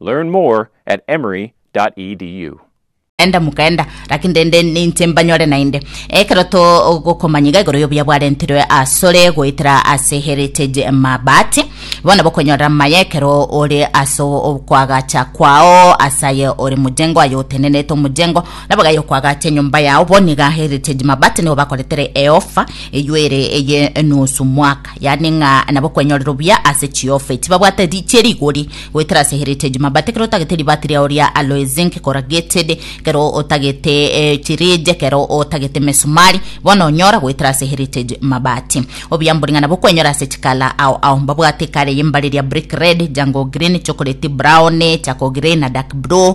Learn more at emory.edu. Enda mokenda, lakini rende ninche mbanyore naende. Ekero togokomanya iga igoro y'obuya bwarentirwe asore goetera ase Heritage Mabati, bono bokonyorera amaya ekero ore ase okwagacha kwao ase aye ore mojengo, aye otenenete omojengo, nabo gaya okwagacha enyomba yao. Bono iga Heritage Mabati nigo bakoretere eofa eyio ere eye nusu mwaka. yaani ng'a nabo kwenyorera obuya ase chiofe tibabwate ri chie rigori goetera ase heritage mabati kero otagete ribati riao ria alloy zinc corrugated kero otagete eh, chirije kero otagete mesumari bono onyora goetera ase heritage mabati obuya mbori ng'a nabo kwenyora ase chikala ao ao mbabwate ekare yembare ria brick red jango green chocolate brown chako grey na dark blue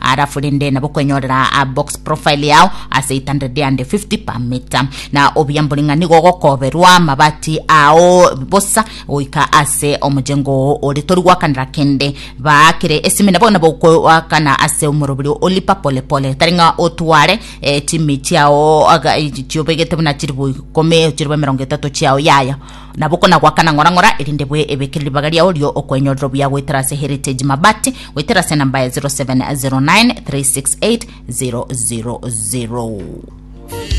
Arafu rende nabo kwenyorera a box profile yao ase 850 per meter na obiambo ring'a nigo ogokoberwa amabati ao bosa goika ase omojengo oo ore tori gwakanera kende baa kere esimine bono nabo okoakana ase omorobiri olipa pole pole tari ng'a otware eh, chimi chiao aga- eh, chiobegete buna chiribu ikomi chiribu emerongo etato chiao yaya Nabo konagwakana ng'ora ng'ora, erinde bwe ebekere ribaga riao rio okwenyorera obuya goetera ase Heritage Mabati goetera ase enamba ya 0709 368 000.